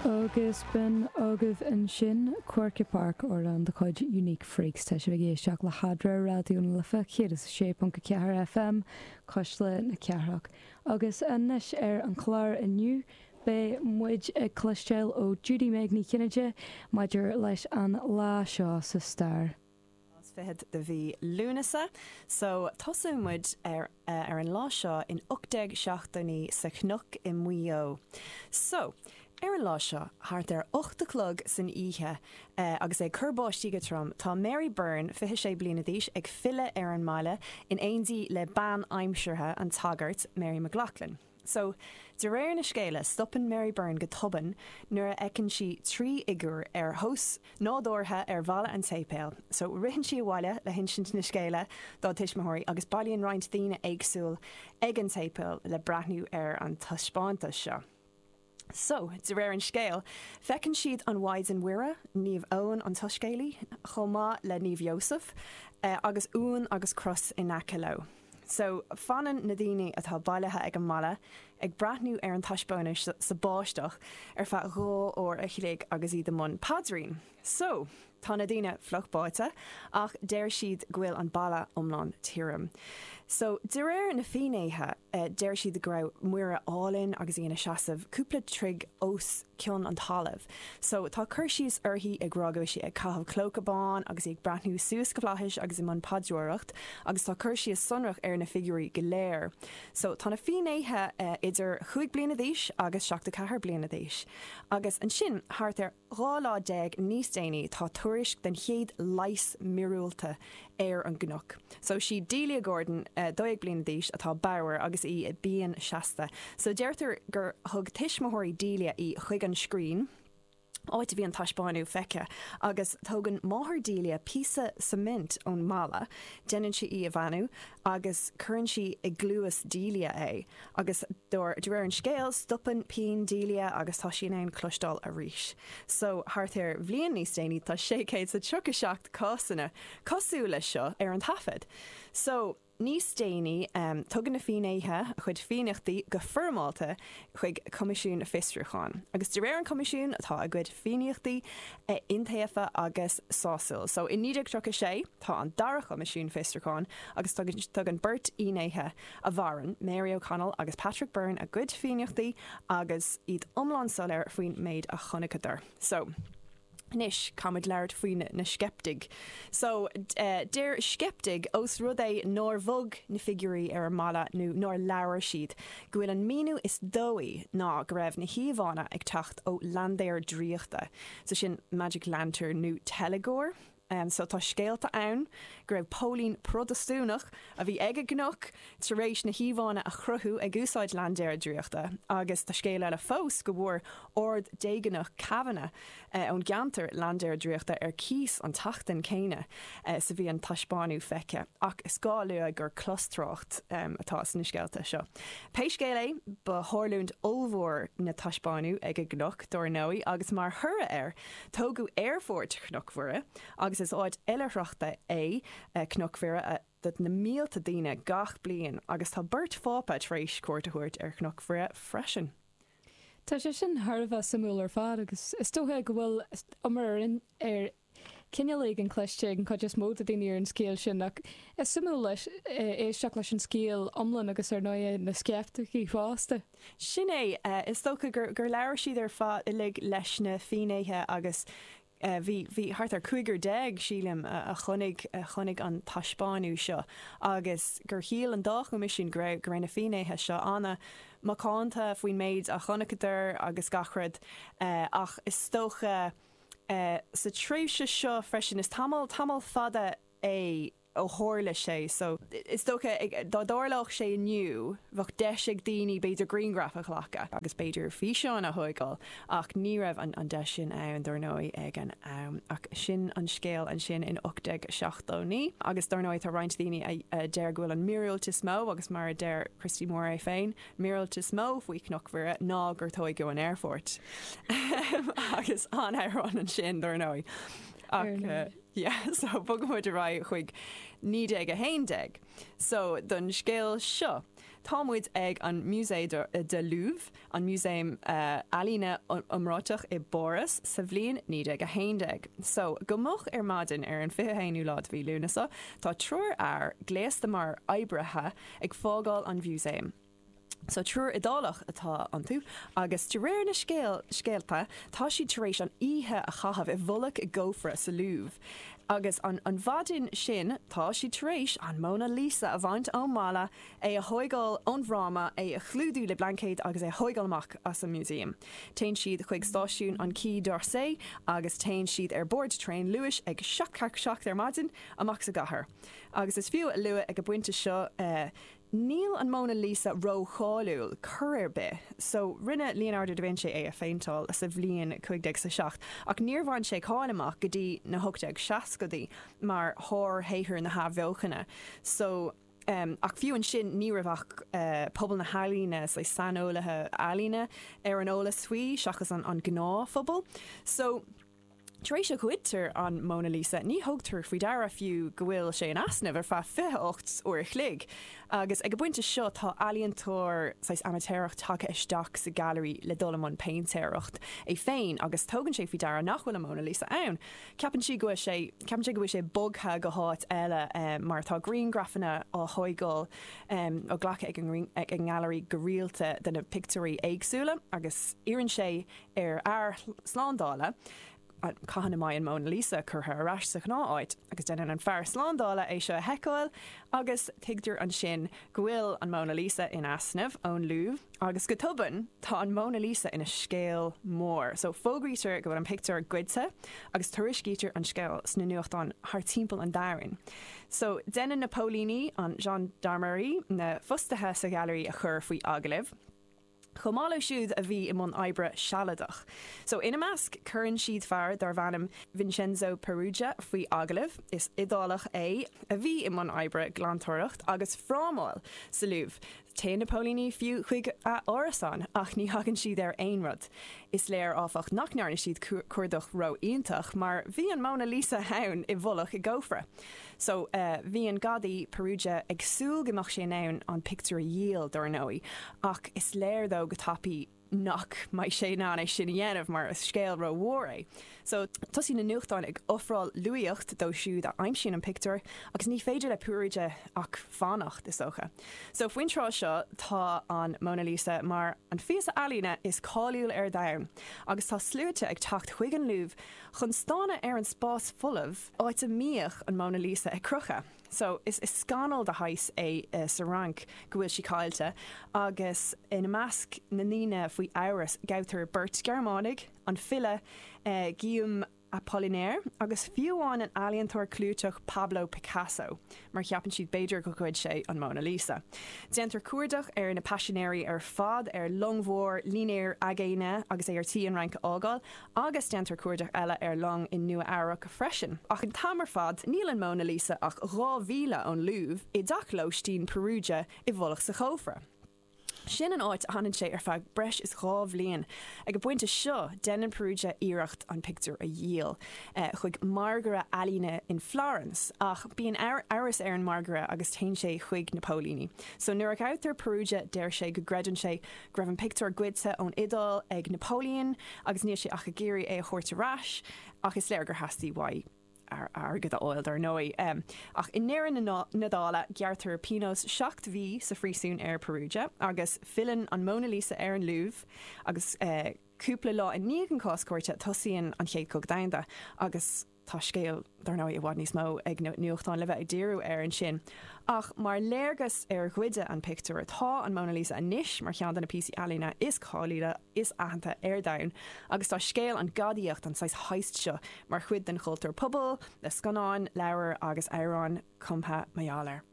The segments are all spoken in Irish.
Agus b'shin agaibh ansin Quirke Park, amhrán de chuid Unique Freaks. Tá sibh ag éisteacht le hAdre, Raidió na Life 106.4 FM, Cuisle na Cathrach. Agus anois ar an chlár inniu, beidh muid ag cloisteáil ó Judy-Meg Ní Chinnéide maidir leis an lá seo sa stair. is fichead de mhí Lúnasa so tosóidh muid ar ar an lá seo in ocht déag seachtó naoi sa Chnoc i Muigh Eo. So, ar an lá seo, thart ar ocht a chlog san oíche, agus é ag cur báistí go trom, tá Mary Byrne, fiche sé bliana d'aois, ag filleadh ar an mbaile in éindí le bean aimseartha an tsagairt, Mary McLaughlin. So, de réir na scéala, stopann Mary Byrne go tobann nuair a fheiceann sí trí fhigiúr ar thomhas nádúrtha ar bhalla an tséipéil. So, ritheann sí abhaile le hinsint na scéala dá tuismitheoirí agus bailíonn roinnt daoine éagsúla ag an tséipéal le breathnú ar an taispeántas seo. So, de réir an scéil, feiceann siad an Mhaighdean Mhuire, Naomh Eoin an tSoiscéalaí, chomh maith le Naomh Iósaf, agus uan agus cros in aice leo. So, fanann na daoine atá bailithe ag an mballa ag breathnú ar an taispeántas sa báisteach ar feadh dhá uair a chloig agus iad i mbun paidrín. So, tá na daoine fliuch báite ach deir siad go bhfuil an balla iomlán tirim. So, de réir na fínnéithe, deir siad go raibh Muire álainn agus í ina seasamh cúpla troigh os cionn an talaimh. So, tá cur síos uirthi ag rá go bhfuil sí ag caitheamh clóca bán agus í ag breathnú suas go flaithis agus i mbun paidreoireacht agus tá cur síos sonrach ar na figiúirí go léir. So, tá na fínnéithe idir chúig bliana d'aois agus seachtó ceathair bliana d'aois. Agus ansin, thart ar. Dhá lá déag níos déanaí tá tuairisc den chéad leigheas míorúilteach ar an gCnoc so. 'Sí Delia Gordon, dó dhéag bliana d'aois, atá bodhar agus í i bpian seasta. So deirtear gur thug tuismitheoirí Delia í chuig an scrín, áit a bhí an taispeánadh feicthe, agus tógann máthair Delia píosa cement ón mballa, déanann sí í a bheannú agus cuireann sí i gcluas Delia é. Agus de réir an scéil, stopann pian Delia agus tá sí in ann cloisteáil arís. So, thart ar bhliain níos déanaí, tá sé chéad is a tríocha seacht cásanna cosúil leis seo ar an taifead. So, níos déanaí, tugann na fínnéithe a gcuid fianaíochtaí go foirmeálta chuig Coimisiún Fiosrúcháin. Agus de réir an Choimisiún, tá a gcuid fianaíochtaí iontaofa agus sásúil. So, i 1936, tá an Dara Coimisiún Fiosrúcháin agus tugann beirt fhínnéithe a mhaíonn Mary O'Connell agus Patrick Byrne a gcuid fianaiseachtaí agus iad iomlán soiléir faoin méid a chonaiceadar. So. Anois, caithfimid labhairt faoi na sceiptigh. So, deir sceiptigh, ós rud é nár bhog na figiúirí ar an mballa nó nár labhair siad, go bhfuil an míniú is dóichí ná go raibh na híomhánna ag teacht ó laindéar draíochta, so sin magic lantern nó teilgeoir, So tá scéalta ann go raibh póilín Prodastúnach a bhí ag an gcnoc tar éis na híomhánna a chruthú ag úsáid laindéar draíochta agus tá scéal eile fós go bhfuair Ard-Déagánach Cavanagh ón gceantar laindéar draíochta ar cíos an tseachtain céanna is a bhí an taispeánadh feicthe ach is gá a lua gur clostrácht atá sna scéalta seo. Pé scéal é ba tharlúint ollmhór an taispeánadh ag an gcnoc dár ndóigh agus mar thoradh air, Tógadh Aerfort Chnoc Mhuire, agus is áit oilithreachta é Cnoc Mhuire do na mílte daoine gach bliain, agus tá beirt Phápa tar éis cuairt a thabhairt ar Chnoc Mhuire freisin. Tá sé sin thar a bheith suimiúil ar fad, agus is dócha go bhfuil iomrá ar chineál éigin cloiste ag an chuid is mó daoine ar an scéal sin, ach is suimiúil le éisteacht leis an scéal iomlán agus ar ndóighe na sceiptigh fosta. Sin é. Is dócha gur labhair siad ar fad uilig leis na fínnéithe agus bhí bhí thart ar cúigear déag, sílim, a chonaic chonaic an taispeánadh seo agus gur shíl an dá choimisiún go raibh na fínnéithe seo an-macánta faoin méid a chonaiceadar agus gach rud ach is dócha sa tréimhse seo freisin, is tamall tamall fada é ó tharla sé so. Is dócha, dá dtarlódh sé inniu, bheadh deis ag daoine b'fhéidir grianghraif a ghlacadh agus b'fhéidir físeán a thóigeáil ach ní raibh an deis sin ann dár ndóigh ag an am. Ach sin an scéal ansin in 1879 agus dár ndóigh tá roinnt daoine a deir go bhfuil an míorúilt is mó agus mar a deir Christy Moore é féin, míorúilt is mó faoi Chnoc Mhuire ná gur tóigeadh an aerfort. Agus an-amhrán ansin dár ndóigh. Ach. Yeah, so bogaimid ar aghaidh chuig 1911. So, don scéal seo, táimid ag an Musée de, de Louvre, an músaem ealaíne iomráiteach i bPáras, sa bhliain 1911. So, go moch ar maidin ar an 21ú lá de mhí Lúnasa, tá triúr fear, gléasta mar oibrithe, ag fágáil an Mhúsaeim. So triúr Iodálach atá iontu agus de réir na scéalta tá siad tar éis an oíche a chaitheamh i bhfolac i gcófra sa Louvre agus an mhaidin sin tá siad tar éis an Mona Lisa a bhaint ón mballa, é a thóigeáil ón bhfráma, é a chlúdú le blaincéad agus é a thóigeáil amach as an músaem. Téann siad chuig stáisiún an Quai d'Orsay agus téann siad ar bord traein luais ag seacht ceathracha seacht ar maidin amach sa gcathair. Agus is fiú a lua ag an bpointe seo, Níl an Mona Lisa ró-cháiliúil cor ar bith, so rinne Leonardo da Vinci é a phéinteáil sa bhliain cuig déag is a seacht, ach níor bhain sé cáil amach go dtí na hocht déag seascadaí mar shárshaothar na hAthbheochana, so em, ach fiú ansin ní raibh ach eh pobal na healaíne, say saineolaithe ealaíne ar an eolas faoi seachas an an gnáthphobal, so. Tar éis seo goidtear an Mona Lisa ní thugtar faoi deara fiú go bhfuil sé in easnamh ar feadh 28 uair a chloig agus ag an bpointe seo tá ealaíontóir saghas amaitéarach tagtha isteach sa ghailearaí le dul i mbun péintéireacht é féin agus tugann sé faoi deara nach bhfuil an Mona Lisa ann. Ceapann sé go bhfuil sé ceapann sé go bhfuil sé bogtha go háit eile mar tá grianghrafanna á thóigeáil á glacadh ag an nGailearaí go rialta de na pictiúirí éagsúla agus iarrann sé ar fhear slándála. cathain a mbeidh an Mona Lisa curtha ar ais sa ghnáth áit agus deineann an fear slándála é seo a sheiceáil agus tuigtear ansin go bhfuil an Mona Lisa in easnamh ón Louvre agus go tobann tá an Mona Lisa ina scéal mór. So fógraítear go bhfuil an pictiúr goidte agus tuairiscítear an scéal sna nuachtáin thar timpeall an domhain. So deineann na póilíní, an Gendarmerie, na fostaithe sa ghailearaí a chur faoi agallamh. chomh maith leo siúd a bhí i mbun oibre sealadach. So ina measc cuireann siad fear darbh ainm Vincenzo Peruggia faoi agallamh. Is Iodálach é a bhí i mbun oibre glantóireacht agus frámáil sa Louvre. Téann na póilíní fiú chuig a árasán ach ní thagann siad ar aon rud. Is léir áfach nach ndearna siad cuardach ró-iontach mar bhí an Mona Lisa ann i bhfolach i gcófra. So, bhí an gadaí, Peruggia, ag súil go mbeadh sé in ann an pictiúr a dhíol, dar ndóigh, ach is léir dó go tapaidh nach mbeidh sé in ann é sin a dhéanamh mar is scéal ró-mhór é. So, tosaíonn na nuachtáin ag ofráil luaíocht dóibh siúd a aimsíonn an pictiúr agus ní féidir le Peruggia ach fanacht, is dócha. So, faoin tráth seo, tá an Mona Lisa mar an phíosa ealaíne is cáiliúil ar domhan agus tá sluaite ag teacht chuig an Louvre chun stánadh ar an spás folamh, áit a mbíodh an Mona Lisa ar crochadh. So, is scannal de shaghas é sa Fhrainc go bhfuil sí caillte agus ina measc na ndaoine faoi amhras gabhtar beirt Ghearmánaigh, an file Guillaume Apollinaire agus fiú amháin an ealaíontóir clúiteach Pablo Picasso mar cheapann siad b'fhéidir gur ghoid sé an Mona Lisa. Déantar cuardach ar na paisinéirí ar fad ar long mhór, línéar aigéine agus é ar tí an Fhrainc a fhágáil Agus déantar cuardach eile ar long i Nua-Eabhrac freisin. Ach an t-am ar fad níl an Mona Lisa ach dhá mhíle ón Louvre, i dteach lóistín Peruggia i bhfolach sa chófra. Sin an áit a fhanann sé ar feadh breis is dhá bhliain. Ag an bpointe seo déanann Peruggia iarracht an pictiúr a dhíol chuig margaire ealaíne in Florence. Ach bíonn amhras ar an mangaire agus téann sé chuig na póilíní. So nuair a ghabhtar Peruggia deir sé go gcreideann sé go raibh an pictiúr goidte ón Iodáil ag Napoleon agus níl sé ach ag iarraidh é a thabhairt ar ais, ach is léir gur theastaigh uaidh airgead a fháil dar ndóigh. Ach i ndeireadh na dála gearrtar pionós seacht mhí sa phríosún ar Peruggia agus filleann an Mona Lisa ar an Louvre agus cúpla lá i ndiaidh an cás cúirte tosaíonn an Chéad Chogadh Domhanda agus Tá scéal, dar ndóigh, i bhfad níos mó ag na nuachtáin le bheith ag díriú air ansin. Ach mar léargas ar ghoid an pictiúr, tá an Mona Lisa anois mar cheann de na píosaí ealaíne is cáiliúla, is aitheanta ar domhan. Agus tá scéal an ghadaíocht, an saghas heist seo, mar chuid den chultúr pobail, le scannáin, leabhair agus amhráin cumtha mar gheall air.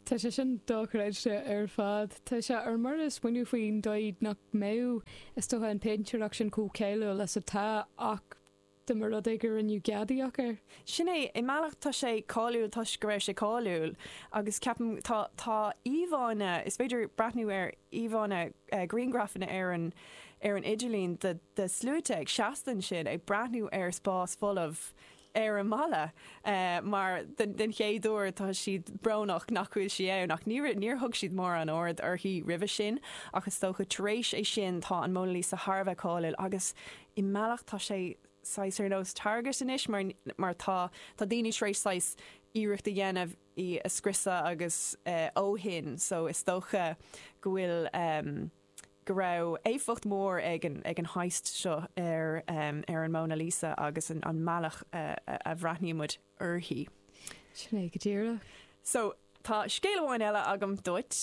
Tá sé sin dochreidte ar fad. Tá sé ar mire a smaoineamh faoin dóigh nach mbeadh, is dócha, an péintéireacht sin chomh cáiliúil is atá. Ach. dá mba rud é go rinneadh gadaíocht air. Sin é, i mbealach tá sé cáiliúil toisc go raibh sé cáiliúil agus ceapaim tá, tá íomhánna, is féidir breathnú ar íomhánna, grianghrafanna ar an, ar an idirlíon de, de shluaite ag seasta ansin ag breathnú ar spás folamh ar an mballa mar don, don chéad uair tá siad brónach nach bhfuil sí ann ach níor, níor thug siad mórán aird uirthi roimhe sin ach is dócha tar éis é sin tá an Mona Lisa thar a bheith cáiliúil agus i mbealach tá sé saghas ar nós target anois mar mar tá tá daoine tar éis saghas iarracht a dhéanamh í a scriosadh agus eh ó shin so is dócha go bhfuil ehm go raibh éifeacht mór ag an ag an heist seo ar ehm ar an Mona Lisa agus an an mbealach a a bhreathnaíonn muid uirthi. Sin é go díreach. So. Tá scéal amháin eile agam duit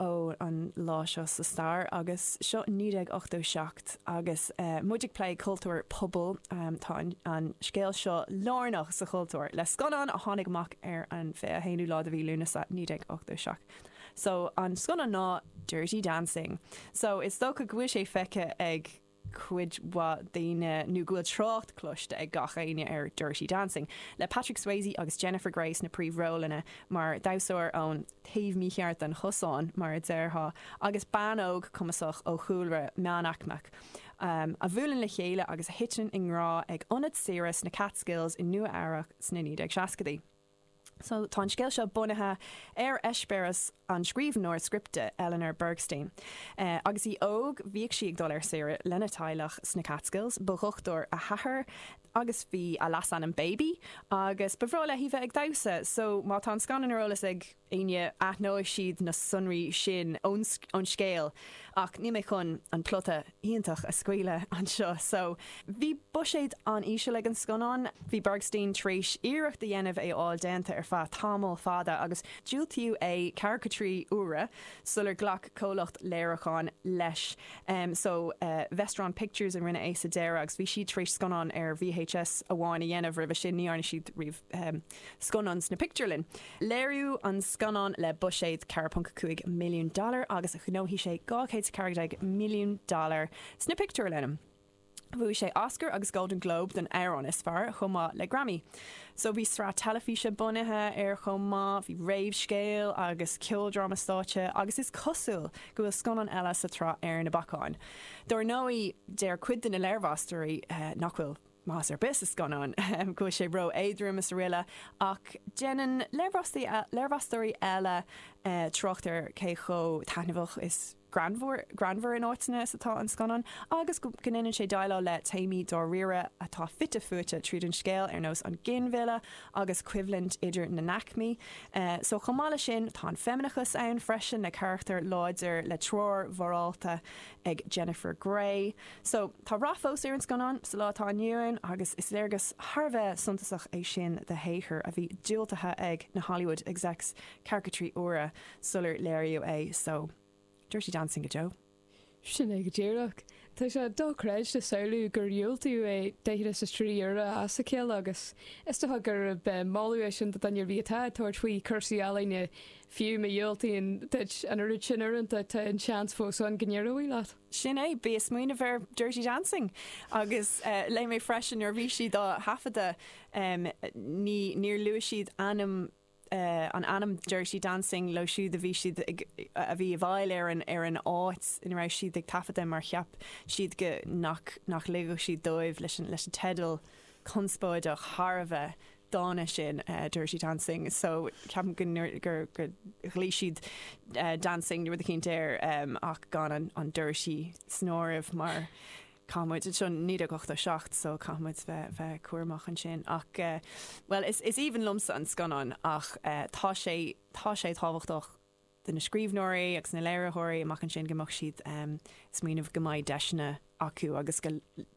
ó an lá seo sa stair agus seo 1987 agus muid ag plé cultúr pobail. Tá an scéal seo lárnach sa chultúr le scannán a tháinig amach ar an 21ú lá de mhí Lúnasa 1987 so an scannán ná Dirty Dancing so is dócha go bhfuil sé feicthe ag cuid mhaith daoine, nó go bhfuil trácht cloiste ag gach éinne ar Dirty Dancing, le Patrick Swayze agus Jennifer Grey sna príomhrólanna, mar dhamhsóir ón taobh mícheart den chosán, mar a déarfá, agus bean óg cumasach ó chúlra meánaicmeach, a bhuaileann le chéile agus a thiteann i ngrá ag ionad saoire sna Catskills i Nua-Eabhrac sna 1960idí. So tá an scéal seo bunaithe ar eispéireas an scríbhneoir scripte Eleanor Bergstein. Agus í óg bhíodh sí ag dul ar saoire lena teaghlach sna Catskills. Ba dhochtúir a hathair agus b'é a leasainm Baby agus ba bhreá léi bheith ag damhsa. So má tá an scannán ar eolas ag éinne aithneoidh siad na sonraí sin ón scéal ach níl mé chun an plota iontach a scaoileadh anseo. So, bhí buiséad an-íseal ag an scannán. Bhí Bergstein tar éis iarracht a dhéanamh é a fháil déanta ar feadh tamall fada agus diúltaíodh é ceathracha a trí uaire sular ghlac comhlacht léiriúcháin leis, em, so, Vestron Pictures a rinne é sa deireadh agus bhí siad tar éis scannán ar VHS amháin a dhéanamh roimhe sin, ní dhearna siad riamh. scannán sna pictiúrlanna. Léiríodh an scannán le buiséad 4.5 milliún dollar agus ghnóthaigh sé 214 milliún dollar sna pictiúrlanna. Bhuaigh sé Oscar agus Golden Globe don amhrán is fearr chomh maith le Grammy. So bhí sraith teilifíse bunaithe air chomh maith, bhí réamhscéal agus ceoldráma stáitse agus is cosúil go bhfuil scannán eile sa tsraith ar na bacáin. Dar ndóigh deir cuid de na léirmheastóirí nach bhfuil. Meas ar bith sa scannán go bhfuil sé ró-éadrom is araile ach déanann léirmheastóirí eile trácht ar cé chomh taitneamhach is greannmhar in áiteanna is atá an scannán agus go ndéanann sé déileáil le téamaí dáiríre atá fite fuaite tríd an scéal ar nós an ginmhilleadh agus coimhlint idir na n-aicmí so. Chomh maith leis sin tá an feimineachas ann freisin le carachtar láidir le treoir mhorálta ag Jennifer Grey. So, tá rath fós ar an scannán sa lá atá inniu ann agus is léargas thar a bheith suntasach é sin de shaothar a bhí diúltaithe ag na Hollywood execs ceathracha a trí uaire sular léiríodh é. So, Dirty Dancing go deo. Sin é go díreach. Tá sé dochreidte a shamhlú gur diúltaíodh é daichead is a trí uaire as a chéile agus is dócha gurb é moladh é sin do dhuine ar bith atá ag tabhairt faoi chúrsaí ealaíne, fiú má dhiúltaítear duit an oiread sin uaireanta tá an seans fós ann go n-éireoidh leat. Sin é, bí ag smaoineamh ar Dirty Dancing! Agus léigh mé freisin nuair a bhí siad á thaifeadadh ní, níor luaigh siad ainm, an ainm Dirty Dancing leo siúd a bhí siad ag, a bhí i bhfeighil ar an, ar an áit ina raibh siad ag taifeadadh mar cheap siad go, nach, nach ligfeadh siad dóibh, leis an, leis an teideal conspóideach thar a bheith, dána sin, Dirty Dancing, so ceapaim go ndeir, gur, go ghlaoigh siad Dancing nó rud eicínt air agus gan an, an Dirty san áireamh mar caithfidh muid, seo 1987 so caithfidh muid bheith, bheith cúramach ansin ach bhuel is, is aoibhinn liomsa an scannán ach tá sé, tá sé tábhachtach. de na scríbhneoirí agus na léiritheoirí amach ansin go mbeadh siad um smaoineamh go mbeidh deiseanna acu agus go,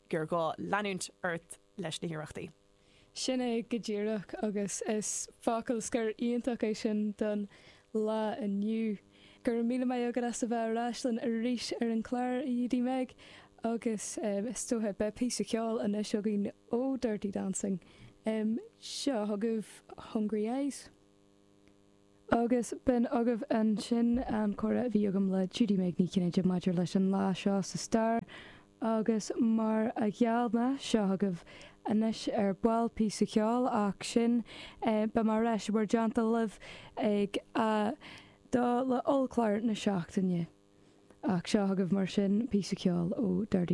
gur gá leanúint ort leis na hiarrachtaí. Sin é go díreach agus is focal scoir iontach é sin don lá inniu. Go raibh míle maith agat as a bheith ar ais linn arís ar an gclár, a Judy-Meg, agus um is dóiche beidh píosa ceoil anois againn ó Dirty Dancing. Um seo chugaibh Hungry Eyes. Agus b'in agaibh ansin an comhrá a bhí agam le Judy-Meg Ní Chinnéide maidir leis an lá seo sa stair agus mar a gheall mé, seo chugaibh anois ar ball píosa ceoil ach sin é, beidh mé ar ais i bhur dteannta libh ag a 2 le hollchlár na seachtaine. Ach seo chugaibh mar sin píosa ceoil ó Dirty.